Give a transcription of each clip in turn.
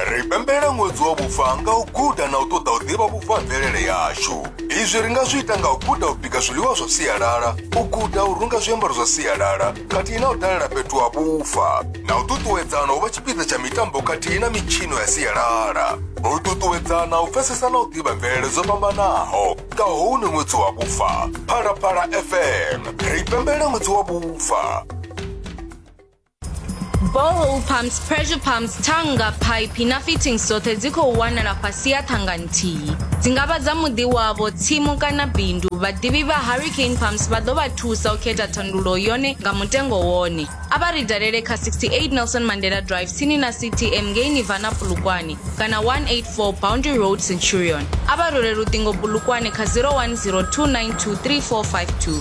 ri pembela ṅwedzi wa vhufa nga u guda na u ṱoḓa u ḓivha vhufa ha mvelele yashu izwi ri nga zwi ita nga u guda u bika zwiḽiwa zwa sialala u guda u runga zwiambaro zwa sialala khathihi na u dalela fhethu ha vhufa na u ṱuṱuwedzana u vha tshipiḓa tsha mitambo khathihi na mitshino ya sialala u ṱuṱuwedzana u pfesesa na u ḓivha mvelele dzo fhambanaho nga houni ṅwedzi wa vhufa phalaphala fm ri pembela ṅwedzi wa vhufa borehole pumps pressure pumps thanga phaiphi na fittings dzoṱhe dzi khou wanala fhasi ya thanga nthihi dzi nga vha dza muḓi wavho tsimu kana bindu vhaḓivhi vha hurricane pumps vha ḓo vha thusa u khetha thandulo yone nga mutengo wone a vha ri dalele kha 68 nelson mandela drive tsini na ctm ngei nivana pulukwane kana 184 boundary road centurion a vha role luṱingo pulukwane kha 0102923452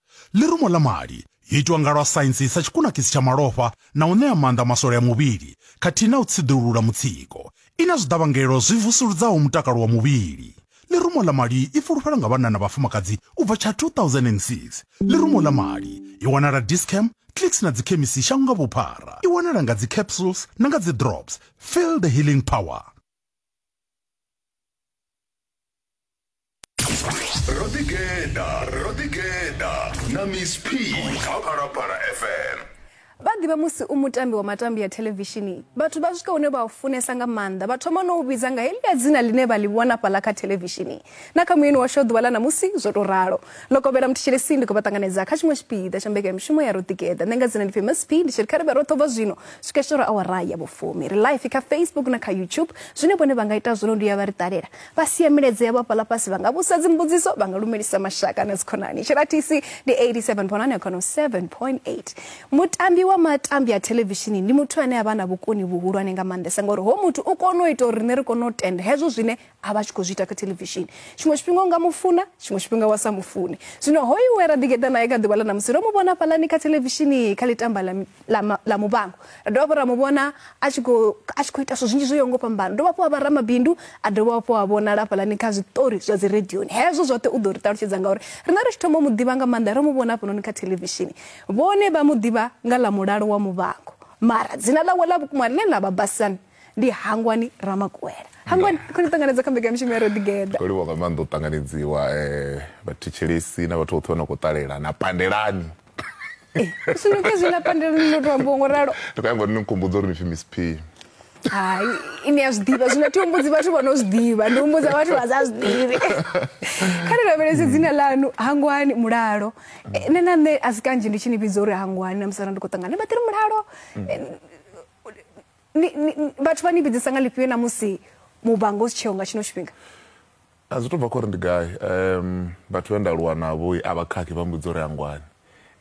Ḽirumo ḽa mali yo itwa nga lwa saintsi sa tshikunakisi tsha malofha na u ṋea maanḓa maswole a muvhili khathihi na u tsiḓulula mutsiko. I na zwiḓavhangelo zwi vusuludzaho mutakalo wa muvhili. Ḽirumo ḽa mali i fulufhelwa nga vhanna na vhafumakadzi u bva tsha 2006. Ḽirumo ḽa mali i wanala Dis-Chem, Clicks na dzikhemisi shango nga vhuphara. I wanala nga dzi capsules na nga dzi drops. Feel the healing power. rodigenda rodigenda na miss p kha phalaphala fm vha ḓivha musi u mutambi wa matambi ya thelevishini vhathu vha swika hune vha u funesa nga maanḓa vha thoma no u vhidza nga heḽia dzina ḽine vha ḽi vhona fhaḽa kha thelevishini na kha muyeni washu ḓuvha ḽa ṋamusi zwo tou ralo ḽo kovhela muthetshelesi ndi khou vha ṱanganedza kha tshiṅwe tshipiḓa tsha mbekanyamushumo ya roḓigeḓa nṋe nga dzina ndi famous p ndi tshi ri kha ri vhe roṱhe ubva zwino swika tshitoro awara ya vhufumi ri life kha facebook na kha youtube zwine vhone vha nga ita zwino ndi ya vha ri ṱalela Vha sia milaedza yavho hafhaḽa fhasi, vha nga vhusa dzimbudziso, vha nga lumelisa mashaka na dzikhonani. Tshiratisi ndi 87 ponani ya khono 7.8. Mutambi wa matambi a thelevishini ndi muthu ane a vha na vhukoni vhuhulwane nga maanḓesa ngauri ho muthu u kona u ita uri riṋe ri kone u tenda hezwo zwine a vha tshi khou zwi ita kha thelevishini. Tshiṅwe tshifhinga u nga mu funa, tshiṅwe tshifhinga wa sa mu fune. Zwino hoyu we ra ḓigeḓa nae kha ḓuvha ḽa ṋamusi, ro mu vhona hafhaḽani kha thelevishini kha ḽi tamba ḽa ḽa ma- ḽa muvhango ra dovha hafhu ra mu vhona a tshi khou a tshi khou ita zwithu zwinzhi zwo yaho ngo fhambana dovha hafhu a vha ramabindu a dovha hafhu a vhonala hafhaḽani kha zwiṱori zwa dzi radioni hezwo zwoṱhe u ḓo ri ṱalutshedza ngauri riṋe ri tshi thoma u mu ḓivha nga maanḓa ro mu vhona hafhanoni kha thelevishini vhone vha mu ḓivha nga ḽa mulalo wa muvhango mara dzina ḽawe ḽa vhukuma ḽine ḽa vha basani ndi hangwani ramakuwela hangwani khou ni ṱanganedza kha mbekanyamishumo ya rodigeda ro livhuwa nga maanḓa u ṱanganedziwa um vhathetshelesi na vhathu vhoṱhe vha no khou ṱalela na pandelani Eh, sunuke zwi na pandelo ni no tou ngo ralo ndi khou nyanga uri ni nkhumbudza uri ni pfi miss p hai ini a zwi ḓivha zwino thi humbudzi vhathu vha no zwi ḓivha ndi humbudza vhathu vha sa zwi ḓivhi kha ni lavhelese mm. dzina ḽanu hangwani mulalo mm. eh, nṋe na nṋe a si kanzhi ndi tshi ni vhidza uri hangwani na musala ndi khou ṱangana vha ḓiri mulalo mm. eh, vhathu vha ni vhidzisa nga lifhio na musi muvhango u si tsheo nga tshino tshifhinga A zwi tou bva kha uri ndi gai. Um, vhathu vhe nda aluwa navho a vha khakhi vha mbudza uri hangwani.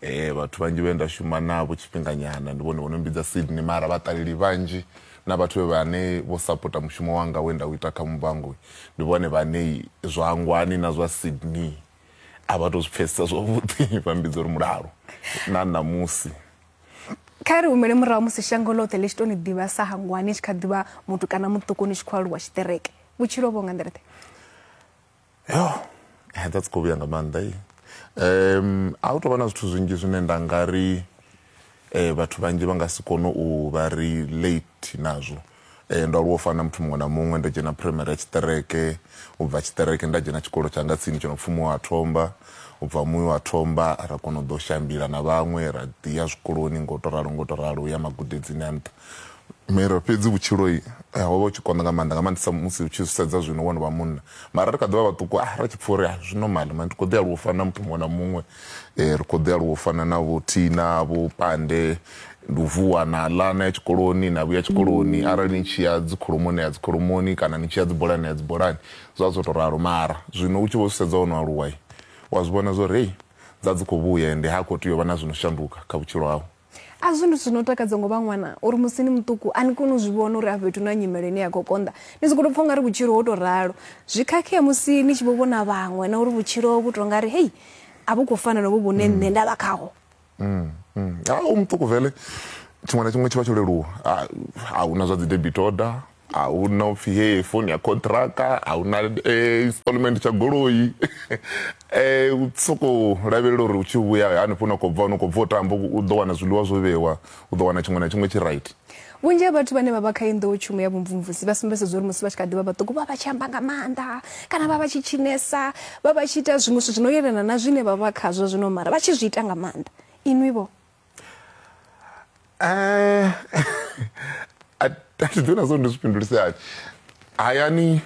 Eh, vhathu vhanzhi vhe nda shuma navho tshifhinganyana ndi vhone vho no mbidza Sydney mara vhaṱaleli vhanzhi na vhathu vhe vhane vho sapota mushumo wanga we nda u ita kha Muvhango ndi vhone vhane zwa hangwani na zwa Sydney a vha tou zwi pfhesesa zwavhuḓi vha mbidza uri mulalo na ṋamusi. kha ri humele murahu musi shango ḽoṱhe ḽi tshi tou ni ḓivha sa hangwa ni tshi kha ḓivha muthu kana muṱuku ni tshi khou aluwa tshiṱereke vhutshilo vho nga nḓila ḓe yo eh, that's khou vhuya nga maanḓa i um a hu tou vha na zwithu zwinzhi zwine nda nga ri um vhathu vhanzhi vha nga si kone u vha relate nazwo um ndo aluwa u fana na muthu muṅwe na muṅwe ndo dzhena phuraimari ya tshiṱereke u bva tshiṱereke nda dzhena tshikolo tsha nga tsini tsho no pfhi muya wa thomba u bva muya wa thomba ra kona u ḓo shambila na vhaṅwe ra ḓi ya zwikoloni ngo to ralo ngo to ralo u ya magudedzini a nṱha mara fhedzi vhutshilo eh, ho vha u tshi konḓa nga maanḓa nga maanḓesa musi u tshi zwi sedza zwino wo no vha munna mara ri kha ḓi vha vhaṱuku ah, ra tshi pfha uri ah, zwi normal mani ndi khou ḓi aluwa u fana na muthu muṅwe na muṅwe eh, ri khou ḓi aluwa u fana na vho thina vho pande ndi u vuwa na ḽa na ya tshikoloni na vhuya tshikoloni mm. arali ni tshi ya dzikhulumoni ya dzikhulumoni kana ni tshi ya dzibolani ya dzibolani zwa zwo to ralo mara zwino u tshi vho sedza wo no aluwa wa zwi vhona zwo ri hei dza dzi khou vhuya ende ha khou tea u vha na zwi no shanduka kha vhutshilo hau A zwi ndi zwithu zwi no takadza ngo vha ṅwana uri musi ni muṱuku a ni koni u zwi vhona uri a fhethu na nyimele ine ya khou konḓa ni sokou tou pfha ungari vhutshilo ho tou ralo zwi khakhea musi ni tshi vho vhona vhaṅwe na uri vhutshilo vhu tou nga ri hei a vhu khou fana novho vhune mm. nṋe nda vha khaho mm, mm. a u muṱuku vele tshiṅwe na tshiṅwe tshi vha tsho leluwa a hu na zwa dzi debit order a hu na u pfhi hee foni ya khonṱhiraka a hu na eh, installment tsha goloi um u sokou lavhelela uri u tshi vhuya hanefho na khou bva no khou bva u tamba u ḓo wana zwiḽiwa zwo vhewa u ḓo wana tshiṅwe na tshiṅwe tshi right vhunzhi ha vhathu vhane vha vha kha iyi nḓowetshumo ya vhumvumvusi vha sumbedzedza uri musi vha tshi kha ḓivha vhaṱuku vha vha tshi amba nga maanḓa kana vha vha tshi tshinesa vha vha tshi ita zwiṅwe zwithu zwi no yelana na zwine vha vha khazwo zwino mara vha tshi zwi ita nga maanḓa inwi vho Eh, a thi ḓo na zwo ndi zwi fhindulise hani hayani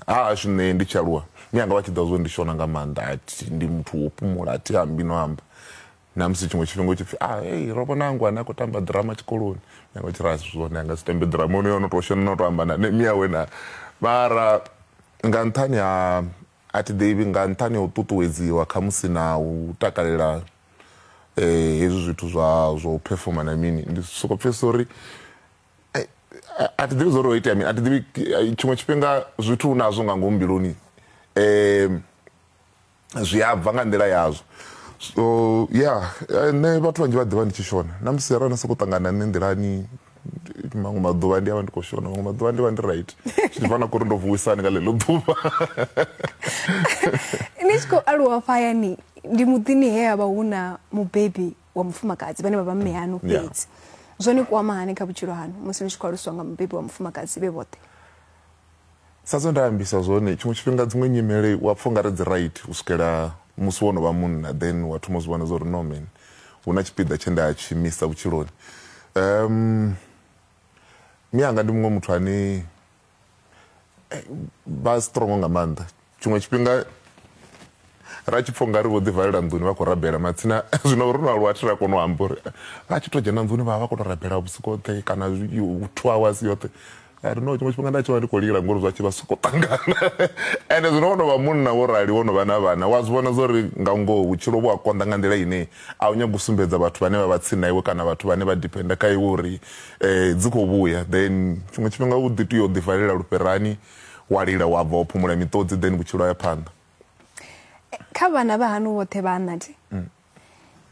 ha hashu nṋe ndi tshi aluwa mi anga vha tshi ḓa zwo ndi shona nga maanḓa athi ndi muthu wo fhumula athi ambi no amba na musi tshiṅwe tshifhinga u tshi pfi a ah, ei ro vhona angu ane a khou tamba ḓirama tshikoloni mi anga tshi ra asi zwone anga si tambe ḓirama ono yono to shona no to amba na ne mi awe na mara nga nṱhani ha a thi ḓivhi nga nṱhani ha u ṱuṱuwedziwa khamusi na u takalela eh hezwi zwithu zwa zwo performa na mini ndi soko pfhesesa uri eh, a thi ḓivhi zwo ri o itea mini a thi ḓivhi eh, tshiṅwe tshifhinga zwithu u nazwo nga ngomu mbiluni um zwi a bva nga nḓila yazwo so ya eh, nṋe vhathu vhanzhi vha ḓivha ndi tshi shona na musi arali na sokou ṱangana nṋe nḓilani maṅwe maḓuvha ndi avha ndi khou shona maṅwe maḓuvha ndi vha ndi right zwi bva na kuri ndo vuwisani nga ḽeḽo ḓuvha ni tshi khou aluwa fhayani ndi muḓini he avha hu na mubebi wa mufumakadzi vhane vha vha mme hanu fhedzi zwo ni kwama hani kha vhutshilo hanu musi ni tshi khou aluswa nga mubebi wa mufumakadzi vhe vhoṱhe Sa zwe nda ambisa zwone tshiṅwe tshifhinga dziṅwe nyimele wa pfha ungari dzi right u swikela musi wo no vha munna then wa thoma u zwi vhona zwa uri no man hu na tshipiḓa tshe nda tshi misa vhutshiloni um mianga ndi muṅwe muthu ane vha strong nga maanḓa tshiṅwe tshifhinga ra tshi pfha ungari vho ḓi valela nḓuni vha khou rabela matsina zwino ro no aluwa thi ra kona u amba uri vha tshi to dzhena nḓuni vha vha kona u rabela vhusiku hoṱhe kana two hours yoṱhe ari no tshiṅwe tshifhinga nda tshi vha ndi khou lila ngori zwa tshi vha soko ṱangana ende zwino wo no vha munna wo rali wo no vha na vhana wa zwi vhona zwa uri nga ngoho vhutshilo vhu a konḓa nga nḓila ine a u nyagi u sumbedza vhathu vhane vha vha tsini na iwe kana vhathu vhane vha dependa kha iwe uri um dzi khou vhuya then tshiṅwe tshifhinga u ḓi tea u ḓivalela lufherani wa lila wa bva wa phumula miṱodzi then vhutshilo ya phanḓa kha vhana vha hanu vhoṱhe vha anathi mm.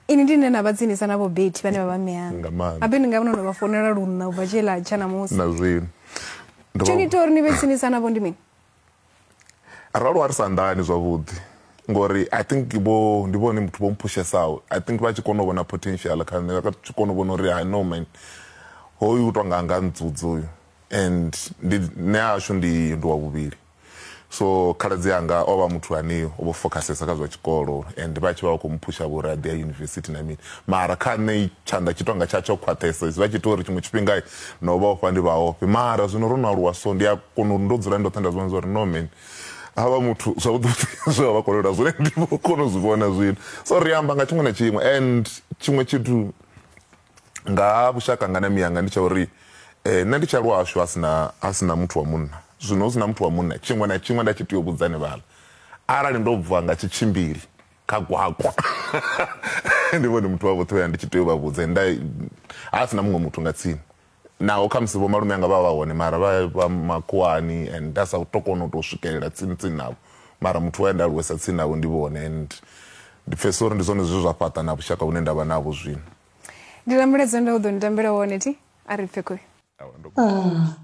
ini ndi ne na vha tsinisa na vho beti vhane vha vha meyana abe ni nga vhona no vha fonela lunna ubva tshela tsha na musi na zwino tsho ni tori ni vhe tsinisa navho ndi mini arali wa ri sa nḓani zwavhuḓi ngori i think vho ndi vhone muthu vho mphushesaho i think vha tshi kona u vhona potential kha nṋe vha tshi kona u vhona uri i know man hoyu u tonga nga ntsudzi uyu and ndi nṋe ashu ndi ndi wa vhuvhili so khaladzi anga o vha muthu ane o vho fokhasesa kha zwa tshikolo and vha tshi vha vha khou muphusha vho uri a ḓi ya yunivesithi na mini mara kha nṋe tshanḓa tshi tonga tsha tsho khwaṱhesa zwi vha tshi ita uri tshiṅwe tshifhinga no vha ofha ndi vha ofhe mara zwino ro no aluwa so ndi a kona uri ndo dzula ndoṱhe nda zwivhona zwa uri no man havha muthu zwavhuḓi zwe vha vha kolelwa zwone ndi vho kona u zwi vhona zwino so ri amba nga tshiṅwe na tshiṅwe and tshiṅwe tshithu nga ha vhushaka nga na miyanga ndi tsha uri eh, nṋe ndi tsha lwashu a sina a sina muthu wa munna zwino hu sina muthu wa munna tshiṅwe na tshiṅwe nda tshi tea u vhudzani vhala arali ndo bva nga tshitshimbili kha gwakwa ndi vhone muthu wa vhoṱhe uya ndi tshi tea u vha vhudze nda a sina muṅwe muthu nga tsini naho kha musi vho malume anga vha vha hone mara vha vha makhuwani and nda sa to kona u to swikelela tsini tsini navho mara muthu wa nda aluwesa tsini navho ndi vhone and Ndi pfesesa uri ndi zwone zwe zwa fhaṱa na vhushaka vhune nda vha navho zwino. Ndi ḽa mulaedza nda u ḓo ni tambela wone thi a ri pfe khoyu. Ah,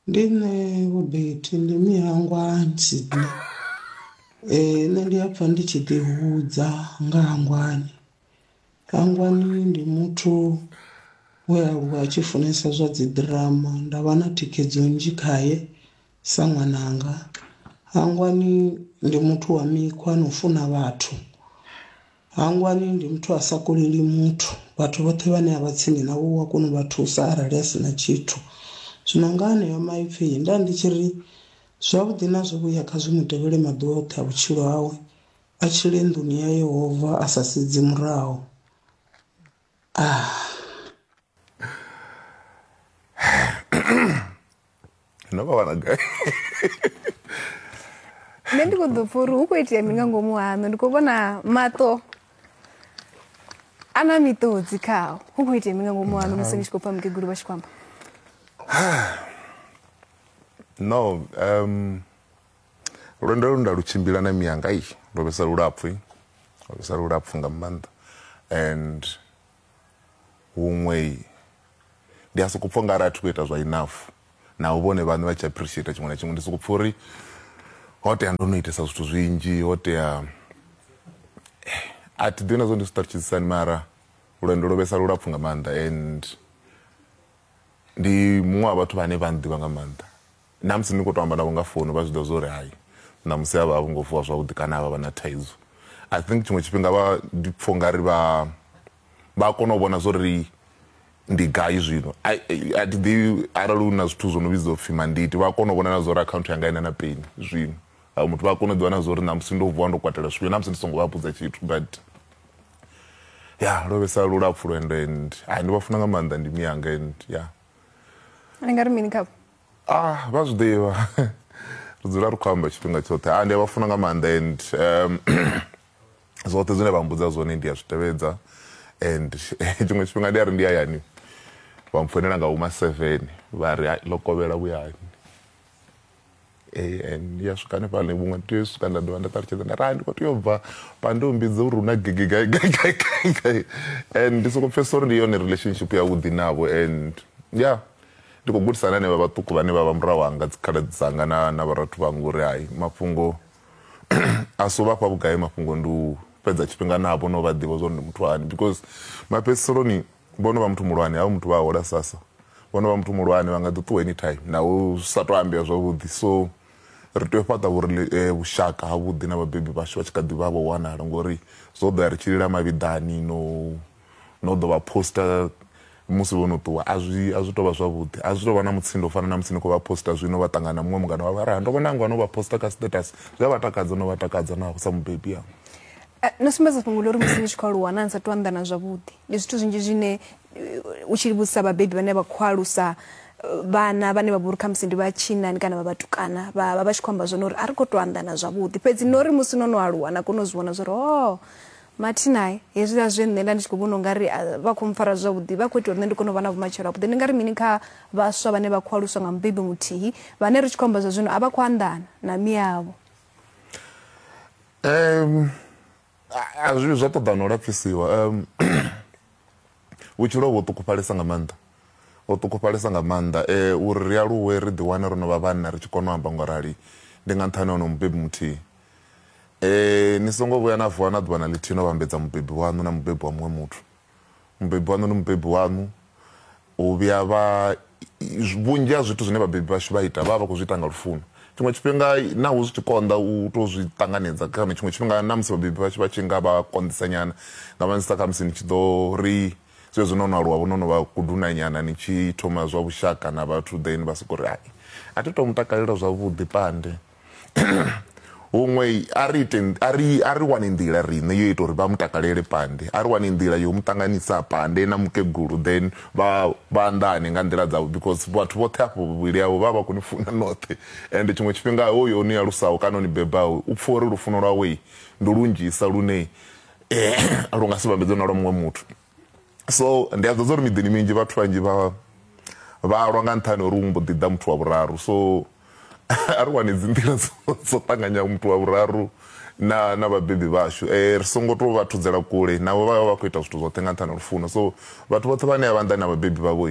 ndi nṋe vho Betty, ndi Mihangwa Sydney. Eh, nṋe ndi a pfa ndi tshi ḓi hudza nga Hangwani. Hangwani ndi muthu we a aluwa a tshi funesa zwa dzi ḓirama, nda vha na thikhedzo nnzhi khaye Sa ṅwananga, hangwani ndi muthu wa mikhwa na u funa vhathu. Hangwani ndi muthu a sa koleli muthu, vhathu vhoṱhe vhane a vha tsini navho u a kona u vha thusa arali a si na tshithu. Zwino nga aneyo maipfi nda ndi tshi ri, Zwavhuḓi na zwivhuya kha zwi mu tevhele maḓuvha oṱhe a vhutshilo hawe, a tshile nḓuni ya Yehova a sa sedzi murahu. no vha wana gai nṋe ndi khou ḓo pfa uri hu khou itea mini nga ngomu haṋu ndi khou vhona maṱo a na miṱodzi khao hu khou itea mini nga ngomu haṋu musi ni tshi khou pfa mukegulu vha tshi khou amba no um Lwendo lu nda lu tshimbila na miyanga i ndo vhesa lulapfu ndo vhesa lulapfu nga maanḓa and huṅwe ndi a soko pfha nga arali a thi khou ita zwa enough naho vhone vhaṋe vha tshi appreciate tshiṅwe na tshiṅwe ndi soko pfha uri ho tea ndo no itesa zwithu zwinzhi ho tea a thi ḓivhi na zwo ndi zwi ṱalutshedzisani mara lwendo lwo vhesa lulapfu nga maanḓa and ndi muṅwe wa vhathu vhane vha ḓivha nga maanḓa Na musi ni khou tou amba navho nga founu vha zwi ḓivha zwa uri hai ṋamusi a vha a vho ngo vuwa zwavhuḓi kana a vha vha na thaidzo. I think tshiṅwe tshifhinga vha ndi pfha u nga ri vha vha a kona u vhona zwa uri ndi gai zwino. A a thi ḓivhi arali hu na zwithu zwo no vhidzwa u pfhi mandate vha a kona u vhona na zwa uri akhaunthu yanga i na na peni zwino. Vhaṅwe muthu vha a kona u ḓivha na zwa uri ṋamusi ndo vuwa ndo kwatela zwifhio na musi ndi so ngo vha vhudza tshithu but ya lwo vhesa lulapfu lwendo and hai ndi vha funa nga maanḓa ndi miyanga and ya. Ni nga ri mini khavho? ah vha zwi ḓivha ri dzula ri khou amba tshifhinga tshoṱhe ah ndi a vha funa nga maanḓa and um, zwoṱhe zwine vha mbudza zwone ndi a zwi tevhedza and tshiṅwe tshifhinga ndi a ri ndi hayani vha mpfonela nga uma seven vha ri ḽo kovhela vhuyani eh, and ya swika hanefhaḽa vhuṅwe ndi tea u swika nda dovha nda ṱalutshedza nda ri ah, ndi khou tea u bva pa ndi umbidze uri hu na gigi gai gai gai gai gai and ndi sokou pfhesesa uri ndi yone relationship yavhuḓi navho and ya yeah. Ndi khou gudisa na henevha vhaṱuku vhane vha vha murahu hanga, dzikhaladzi dzanga na, na vhorathu vhanga uri hai, mafhungo a si u vha fha vhugai, mafhungo ndi u fhedza tshifhinga navho na u vha ḓivha zwa uri ndi muthu hani because mafhedziseloni vho no vha muthu muhulwane, havha muthu vha a hola sasa, vho no vha muthu muhulwane vha nga ḓi ṱuwa anytime naho zwi sa tou ambea zwavhuḓi. So ri tea u fhaṱa vhurele, eh, vhushaka havhuḓi na vhabebi vhashu vha tshi kha ḓi vha vho wanala ngori zwo ḓo ya ri tshi lila mavhiḓani no no ḓo vha poster musi vho no ṱuwa a zwi a zwi tovha zwavhuḓi a zwi tovha na mutsindo u fana na musi ni khou vha poster zwino vha ṱangana na muṅwe mungana wa vha ra ndo vhona ngo no vha poster kha status zwi a vha takadza no vha takadza na sa mubebi yanga eh, no sumbedza fhungo ḽori musi ni tshi khou aluwa na ni sa tou anḓana zwavhuḓi ndi zwithu zwinzhi zwine eh, u tshi vhudzisa vhabebi vhane vha khou alusa vhana vhane vha vhori kha musi ndi vha tshinani kana vha vhatukana vha vha vha tshi khou amba zwone uri a ri khou tou anḓana zwavhuḓi fhedzi no ri musi no no aluwa na kona u zwi vhona zwa uri o oh, Mathinae, Hezwiḽa zwe nṋe nda ndi tshi khou vhona u nga ri a vha khou mpfara zwavhuḓi, vha khou ita uri nṋe ndi kone u vha na vhumatshelo havhuḓi. Ni nga ri mini kha vhaswa vhane vha khou aluswa nga mubebi muthihi vhane ri tshi khou amba zwa zwino a vha khou anḓana na miavho? Zwa ṱoḓa na u lapfhisiwa. Vhutshilo vho ṱukufhalesa nga maanḓa, ho ṱukufhalesa nga maanḓa uri ri aluwe ri ḓiwane ro no vha vhanna ri tshi kona u amba nga u rali ndi nga nṱhani ha onoyo mubebi muthihi. Ni songo vhuya na vuwa na ḓuvha na ḽithihi no vhambedza mubebi waṋu na mubebi wa muṅwe muthu. Mubebi waṋu ndi mubebi waṋu, U vhuya vha, vhunzhi ha zwithu zwine vhabebi vhashu vha ita vha vha vha khou zwi ita nga lufuno. Tshiṅwe tshifhinga naho zwi tshi konḓa u tou zwi ṱanganedza, kana tshiṅwe tshifhinga na musi vhabebi vhashu vha tshi nga vha konḓisa nyana, nga maanḓesa kha musi ni tshi ḓo ri zwezwi no no aluwa vho, no no vha kuduna nyana ni tshi thoma zwa vhushaka na vhathu then vha sokou ri, hai, a thi tou mu takalela zwavhuḓi Pande. huṅwe a ri ite a ri a ri wane nḓila riṋe yo ita uri vha mu takalele pande a ri wane nḓila yo mu ṱanganisa pande na mukegulu then vha vha anḓane nga nḓila dzavho because vhathu vhoṱhe afho vhuvhili avho vha vha koni funa noṱhe and tshiṅwe tshifhinga hoyo ni alusaho kana ni bebaho u pfha uri lufuno lwawe ndi lunzhisa lune eh, lu nga si vhambedzwe na lwa muṅwe muthu so ndi a ḓodza uri miḓini minzhi vhathu vhanzhi vha vhalwa nga nṱhani uri umbo ḓi ḓa muthu wa vhuraru so a ri wane dzinḓila dzo ṱanganya muthu wa vhuraru na na vhabebi vhashu eh ri songo to vha thudzela kule navho vha vha khou ita zwithu zwoṱhe nga nṱhani lufuno so vhathu vhoṱhe vhane a vha nḓani na vhabebi vhavho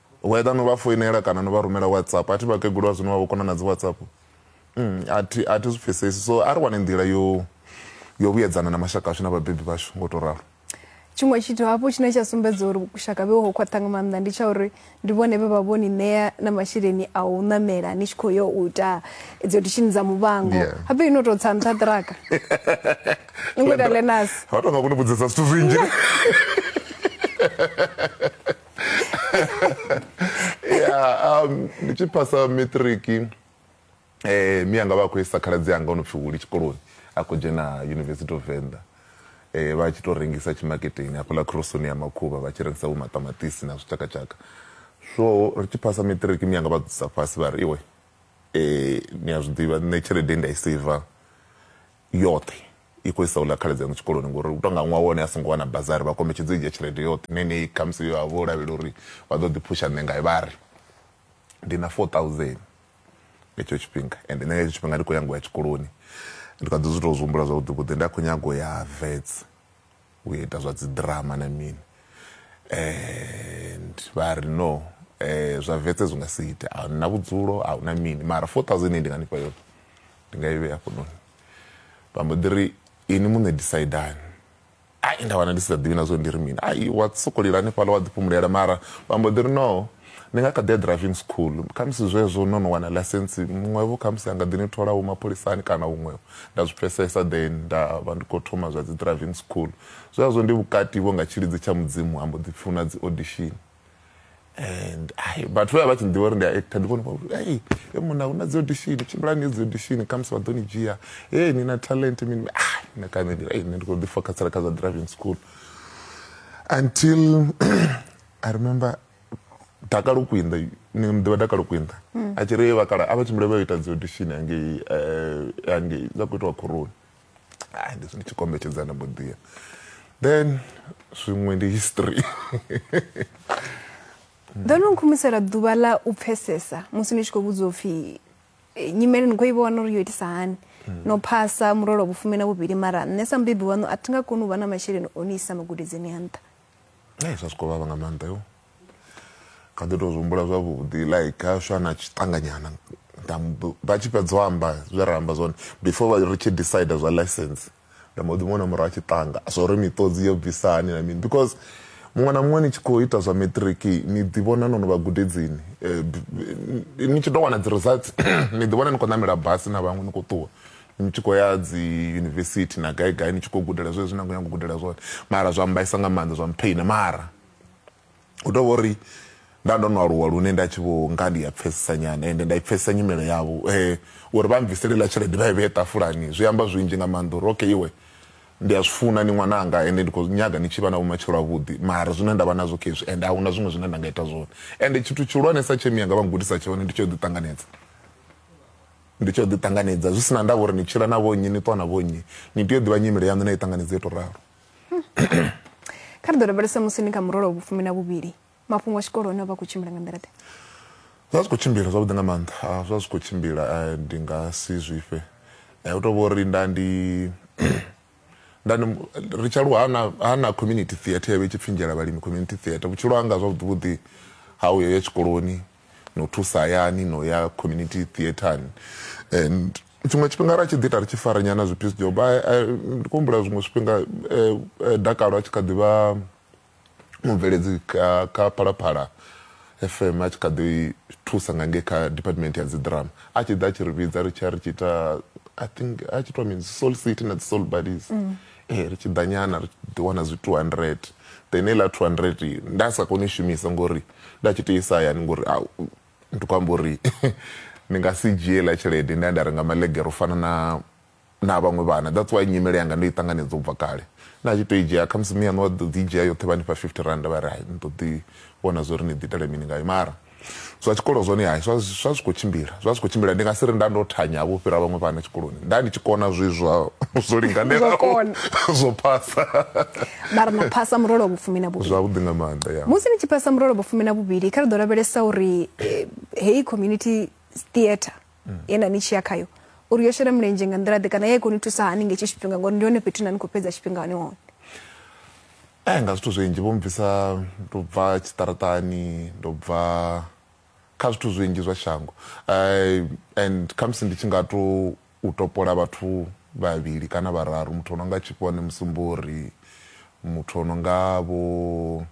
Whether no vha foinela kana no vha rumela WhatsApp, a thi vhakegulu vha zwino vha vho kona na dzi WhatsApp. Umm a thi a thi zwi pfhesesi so a ri wane nḓila yo yo vhuyedzana na mashaka ashu na vhabebi vhashu ngo to ralo. Tshiṅwe tshithu hafhu tshine tsha sumbedza uri vhushaka vhe ho khwaṱha nga maanḓa ndi tsha uri ndi vhone vhe vha vho ni ṋea na masheleni a u ṋamela ni tshi khou yo u ita idzo dishini dza muvhango Yeah. habe ino tou tsa nṱha ṱiraka ni khou ita lenas Vha tou nga kuni vhudzisa zwithu zwinzhi. ya um, ndi tshi phasa matric um mi anga vha khou isa khaladzi anga o no pfi huli tshikoloni a khou dzhena university of venda eh vha tshi to rengisa tshimaketeni hafhaḽa khorosoni ya makhuvha vha tshi rengisa vhomaṱamaṱisi na zwitshakatshaka so ri tshi phasa matric mi anga vha dzisa fhasi vha ri iwe um ni a zwi ḓivha nṋe tshelede nda i saver yoṱhe i khou isa uḽa khaladzi aṋu tshikoloni ngori u tou nga ṅwaha wone a songo wana bazari vha kombetshedza u dzhia tshelede yoṱhe ine ine khamusi yo vha vho lavhelela uri vha ḓo ḓi phusha nṋe ngayo vha ri ndi na 4000 nga hetsho tshifhinga and nṋe nga hetsho tshifhinga ndi khou nyanga u ya tshikoloni ndi kha ḓi zwi tou zwi humbula zwavhuḓi vhuḓi nda khou nyanga u ya vets u ita zwa dzi drama na mini and vha ri no eh, zwa vetse zwi nga si ite a na vhudzulo a huna mini mara 4000 ndi nga nifha yone ndi nga i vhea hafhanoni vha mbo ḓi ri ini muṋe disaidani ai nda wana ndi si sa ḓivhi na zwo ndi ri mini ai wa sokolila hanefhaḽa wa ḓifhumulela mara vha mbo ḓi ri no Ni nga kha ḓi ya driving school, khamusi zwezwo no no wana ḽaisentsi, muṅwevho khamusi a nga ḓi ni thola vho mapholisani kana huṅwevho. Nda zwi pfesesa then nda vha ndi khou thoma zwa dzi driving school. Zwezwo ndi vhukati vho nga tshilidzi tsha Mudzimu ha mbo ḓi pfi hu na dzi audition and ai vhathu vhe vha vha tshi ḓivha uri ndi a actor ndi vhone vha uri ai he munna hu na dzi audition tshimbilani ye dzi audition khamusi vha ḓo ni dzhia he ni na talent mini ah nṋe kha nṋe ndi ai nṋe ndi khou ḓi fokhasela kha zwa driving school until i remember dakalo kwinda ni ḓivha dakalo kwinda mm. a tshi ri vha kala a vha tshimbile vha ita dzi audition hangei eh, hangei dza khou itiwa khoroni ai ndi zwino tshikombetshedza na mboḓia then zwiṅwe ndi history ḓo no nkhumisela ḓuvha ḽa u pfesesa musi ni tshi khou vhudzwa upfhi eh, nyimele ni khou i vhona uri yo itisa hani mm. no phasa murolo vhufumi na vhuvhili mara nṋe sa mubebi waṋu a thi nga koni u vha na masheleni o ni isa magudedzeni a nṱha Hey, zwa swiko vhavha nga maanḓa yo kha ḓi tou zwihumbula zwavhuḓi like ha swa na tshiṱanganyana vha tshi fhedza o amba zwe ra amba zwone before ri tshi decide zwa license nda mbo ḓi muona murahu a tshi ṱanga zwa uri miṱodzi yo bvisa hani na mini because muṅwe na muṅwe ni tshi khou ita zwa matric ni ḓivhona no no vha gudedzini eh, ni tshi tou wana dzi results ni ḓivhona ni khou ṋamela basi na vhaṅwe ni khou ṱuwa Ni tshi khou ya dzi yunivesithi na gai gai ni tshi khou gudela zwezwi na khou nyanga u gudela zwone mara zwa mmbaisa nga maanḓa zwa mpheina mara hu tou vha uri nda ndo no aluwa lune nda tshi vho nga ndi a pfhesesa nyana ende nda i pfhesesa nyimele yavho um uri vha mbvisele iḽa tshelede vha i vhee ṱafulani zwi amba zwinzhi nga maanḓa uri okay iwe ndi a zwi funa ni ṅwananga ende ndi khou nyaga ni tshi vha na vhumatshelo avhuḓi mara zwine nda vha nazwo kha hezwi ende a huna zwiṅwe zwine nda nga ita zwone ende tshithu tshihulwanesa tshe miyanga vha ngudisa tshone ndi tsho ḓi ṱanganedza Ndi tshi yo ḓi ṱanganedza zwi si na ndavha uri ni tshila na vhonnyi ni ṱwa na vhonnyi ni tea u ḓivha nyimele yaṋu na i ṱanganedza yo to ralo kha ri ḓo lavhelesa musi ni kha murole wa vhufumi na vhuvhili mafhungo a tshikolo one a vha khou tshimbila nga nḓila ḓe zwa zwi khou tshimbila zwavhuḓi nga maanḓa ah, zwa zwi khou tshimbila eh, ndi nga si zwifhe eh, u to vha uri nda ndi ndani ri tsha luha na ha na community theatre yavhe tshipfinjela vhalimi community theatre vhutshilo hanga zwavhuḓi vhuḓi ha uyo ya tshikoloni no thusa hayani no ya community theatrani and tshiṅwe tshifhinga ra tshi ḓi ita ri tshi fara nyana zwi peace job ndi khou humbula zwiṅwe zwifhinga eh, eh, dakalo a tshi kha ḓivha mubveledzi kha phalaphala fm a tshi kha ḓi thusa nga ngei kha department ya dzidrama a tshi ḓa a tshi ri vhidza ri tshi a ri tshi ita i think a tshi itiwa mini soul city na dzi soul buddies mm. eh, ri tshi ḓa nyana ri ḓi wana zwi 200 then eḽa 200 nda sa koni u shumisa ngori nda tshi tou isa hayani ngori a ndi khou amba uri ndi nga si dzhie ḽa tshelede nda ya nda renga malegere u fana na na vhaṅwe vhana that's why nyimele yanga ndo i ṱanganedza u bva kale nda tshi tou i dzhia khamusi miyaṋu wa ḓo dzi dzhia yoṱhe vha ni fha fifty rand vha ri hai ni ḓo ḓi vhona zwo ri ni ḓi itela mini ngayo mara zwa tshikolo zwone hai zwa zwi khou tshimbila zwa zwi khou tshimbila ndi nga si ri nda ndo thanya vho fhira vhaṅwe vhana tshikoloni nda ndi tshi kona zwi zwa zwo linganelaho zwo phasa mara na phasa murole wa vhufumi na vhuvhili zwavhuḓi nga maanḓa ya musi ni tshi phasa murole wa vhufumi na vhuvhili kha ri ḓo lavhelesa uri eh, heyi community theatre mm. ye na ni tshi ya khayo uri yo shela mulenzhe nga nḓila ḓe kana ya i koni thusa hani nge tshi tshifhinga ngori ndi hone fhethu na ni khou fhedza tshifhinga hone hone eh nga zwithu zwinzhi vho mbvisa ndo bva tshiṱaratani ndo bva kha zwithu zwinzhi zwa shango eh, and khamusi ndi tshi nga to u topola vhathu vhavhili kana vhararu muthu o no nga Tshifhone Musumbori, muthu o no nga vho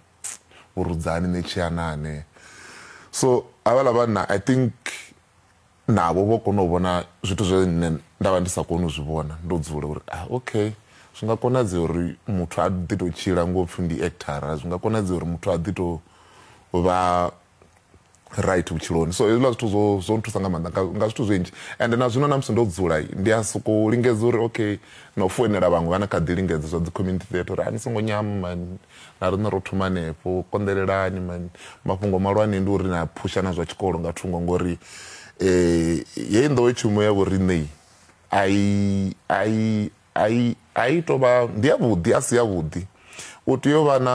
vho Rudzani Netshianane. So havhaḽa vhanna I think navho vho kona u vhona zwithu zwe nṋe nda vha ndi sa koni u zwi vhona ndo dzula uri ah okay zwi nga konadzea uri muthu a ḓi tou tshila ngo pfhi ndi actor, zwi nga konadzea uri muthu a ḓi tou vha right vhutshiloni so hezwiḽa zwithu zwo zwo nthusa nga maanḓa nga zwithu zwinzhi and na zwino na musi ndo dzula ndi a sokou lingedza uri okay na u foinela vhaṅwe vha na kha ḓi lingedza zwa dzi community theatre uri a ni songo nyama mani na riṋe ro thoma hanefho konḓelelani mani mafhungo malwane ndi uri na phusha na zwa tshikolo nga thungo ngori um heyi nḓowetshumo ya vhoriṋei ai ai ai ai tovha ndi yavhuḓi a si yavhuḓi u tea u vha na